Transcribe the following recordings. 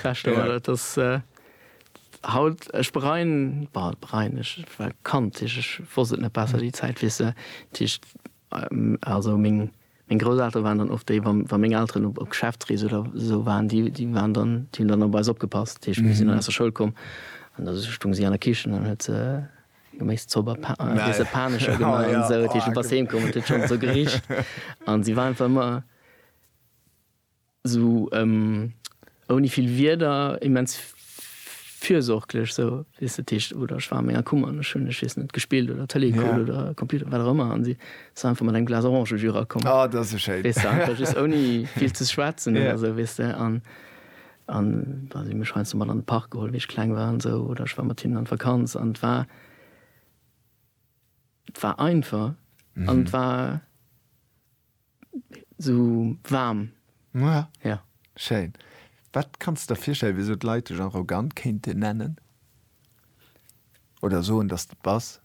Beschte war dat, dass haut, ech bereien, bah, bereien, ech war Kand, ech wosst et net besser, déi Zäit, weess de, dat heescht, also meng, meng Grousseltere waren dann oft déi, wa, wa meng Elteren op, op Geschäftsrees oder esou waren, déi, déi waren dann, déi hunn dann op eis opgepasst, dat heescht, mir sinn dann aus der Schoul komm an da stounge si an der Kichen an huet se Geméiszopp a Pa, wéi se Panescher gemaach an esou, dat heescht, du bass heem komm an et huet schonn esou gericht an si war einfach ëmmer. Sou ouni vill Wierder, immens fürsorglech, sou wéi se d'Heescht, oder ech war an menger Kummer an ech hunn, ech weess net, gespillt oder Tëlee gekuckt oder Computer, wat och ëmmer, an si ass einfach mat engem Glas Orangejus erakomm. Oh, dat ass esou schéin! Weess de, einfach just ouni vill ze schwätzen oder esou, weess de, an si hu mech heiansdo mat an de Park geholl, wéi ech kleng war an esou, oder ech war mat hinnen an d'Vakanz an et war, et war einfach an et war. Sou waarm. Mua. Ja. Schéin. Wat kanns de der virstellen, wéisou d'Leit dech arrogant kéinten nennen oder soen, dass de et bass?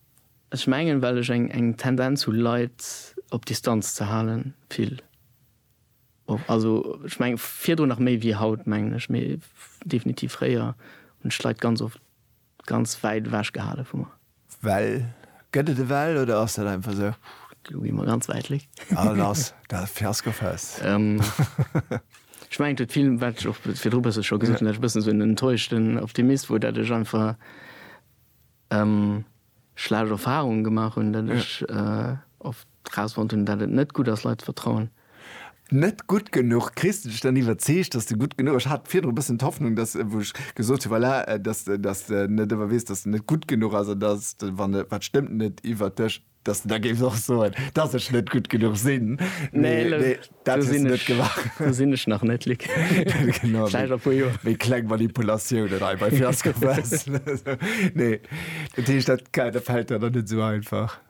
Ech mengen, well ech eng Tendenz hu Leit op Distanz ze halen, vill och. Also ech mengen, virdrun nach méi wéi haut, mengen ech, mee definitiv fréier hunn ech d'Leit ganz oft. Ganz wäit ewech gehale vu mer. Well? Gëtt et e Well oder ass dat einfach esou? Lo gi mer ganz wäit weg. Ah lass dat Fiaskofest. Ech mengen et huet vill, wat ech och virdru e bësse scho gesot hunn, dat ech e bëssen esou en enttäuschten Optimist wor, dat ech einfach schlecht Erfarungen gemaach hunn, dat ech oft, Rausfonnt hunn, dat et net gutt ass, Leit ze vertrauen. Net gutt genuch. Kriss de dech dann iwwerzeegt, dass de gutt genuch. Ech hat virdru e bëssen d'Hoffnung, dass, wou ech gesot hunn, voilà, dass, dass de net ëmmer weess, dass de net gutt genuch ass an dass de, wann e, wat stëmmt net iwwert dech, dass de da géifs och soen, dass ech net gutt genuch sinn. Nee, elo, nee, dat do hues sinn de net ech, gemaach. do sinn ech nach net, Luc. Genau, Vläicht a puer Joer. Méi kleng Manipulatiounen hei bei Fiasco Fest. Nee, dat heescht, dat, dat fält der dann net esou einfach.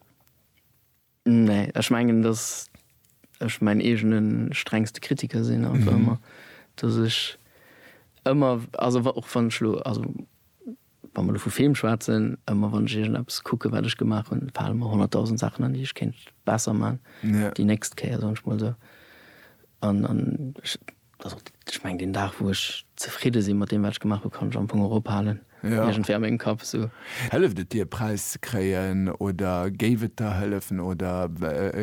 Nee, ech mengen dass ech mäin eegene strengste Kritiker sinn an mhm. ëmmer dass ech ëmmer also och wann schlo also wann man vu Film schwatzen ëmmer wann Gegen Apps kucke wat ech gemacht hun fall immer 100.000 Sachen an die ich kennt besser man ja. die näst Käier sonst mal so an an Also ech mengen deen Dag wou ech zefridde sinn mat deem wat ech gemaach hunn, kann ech am Fong och ophalen iergendwéi a mengem Kapp sou. Hëlleft et dir e Präis ze kréien oder géif et der hëllefen oder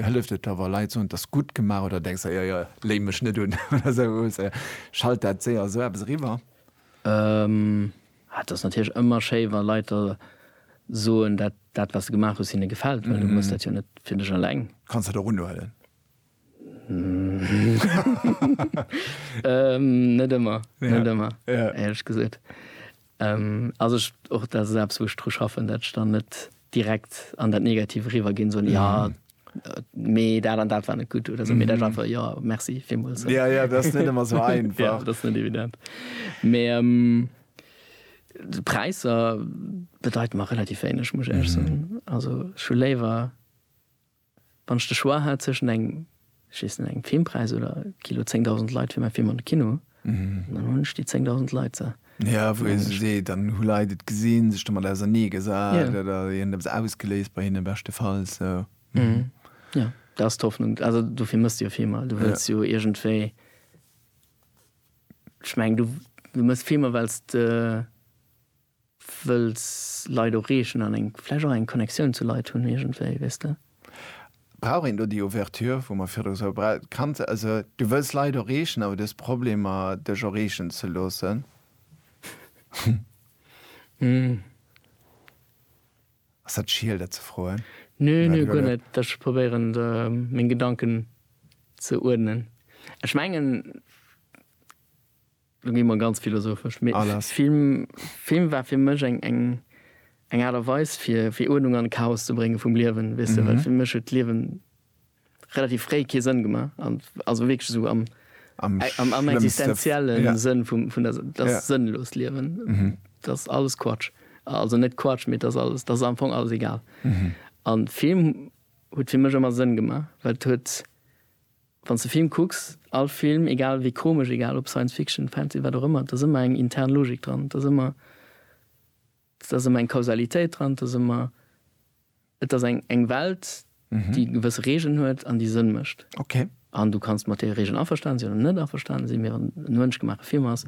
hëlleft et der wa Leit soen t'ass gutt gemaach oder denks der jo jo léim mech net un oder sou schalt dat séier esou eppes eriwwer? T'ass natierlech ëmmer schéi wa Leit der soen dat dat wat s de gemaach hues hinne gefält well du muss dat jo net fir dech eleng. Kanns dat och unhuelen? Net ëmmer, net ëmmer, éierlech gesot. Also ech, och dat ass eppes wou ech dru schaffen, dat ech dann net direkt an dat Negativ eriwwer ginn, soen, jo mee dat an dat war net gutt oder sou, mee dat ass einfach, jo merci villmools. Jo, jo, dat ass net ëmmer sou einfach. Jo, dat ass net evident. Mee Präisser bedeiten mer relativ wéineg, muss ech éierlech soen. Also ech hu léiwer. Wann ech de Choix hat zwëschen engem, ech weess net, engem Filmpräis oder Kilo 10.000 Leit fir mäi Film an de Kino, dann hunn ech déi 10.000 Leit, sa. Jo, wou ee sech seet, dann hu Leit et gesinn, sech domat ausernee gesat oder et eppes ausgeléist bei hinne beschtefalls. Jo, dat ass d'Hoffnung. Also dofir mëss de jo Filmer. Du wëlls jo iergendwéi, ech mengen, du mëss Filmer well s de. Wëlls Leit oreechen an eng, vläicht och eng Connectioun zu Leit hunn iergendwéi, weess de. Brauch een do déi Ouverture, wou mer virdru sou bra. Kanns, also du wëlls Leit oreechen, awer du hues Problemer dech oreechen ze loossen. Ass dat schiel dat ze froen? Nö, nö, guer net. Ech probéieren meng Gedanken ze uerdnen. Ech mengen. Lo gi mer ganz philosophesch, mee Film war fir mech eng Aart a Weis fir Uerdnung an Chaos ze brénge vum Liewen, weess de, well fir mech huet d'Liewen relativ fréi kee Sënn gemaach, also wierklech esou am existenziellen Sënn vun der, dat ass sënnlos, Liewen, dat ass alles Quatsch, also net Quatsch, mee dat ass alles, dat ass am Fong alles egal. An Film huet fir mech ëmmer Sënn gemaach, well et huet. Wann s de Film kucks, all Film, egal wéi komesch, egal ob Science Fiction, Fantasy, wat och ëmmer, et ass ëmmer eng intern Logik dran, et ass ëmmer, et ass ëmmer eng Kausalitéit dran, et ass ëmmer, et ass eng, eng Welt, déi gewësse Regeln huet an déi Sënn mécht. Okay. An du kanns mat deene Regeln averstanen sinn oder net averstanen sinn, mee wann et e mënschgemaache Film ass,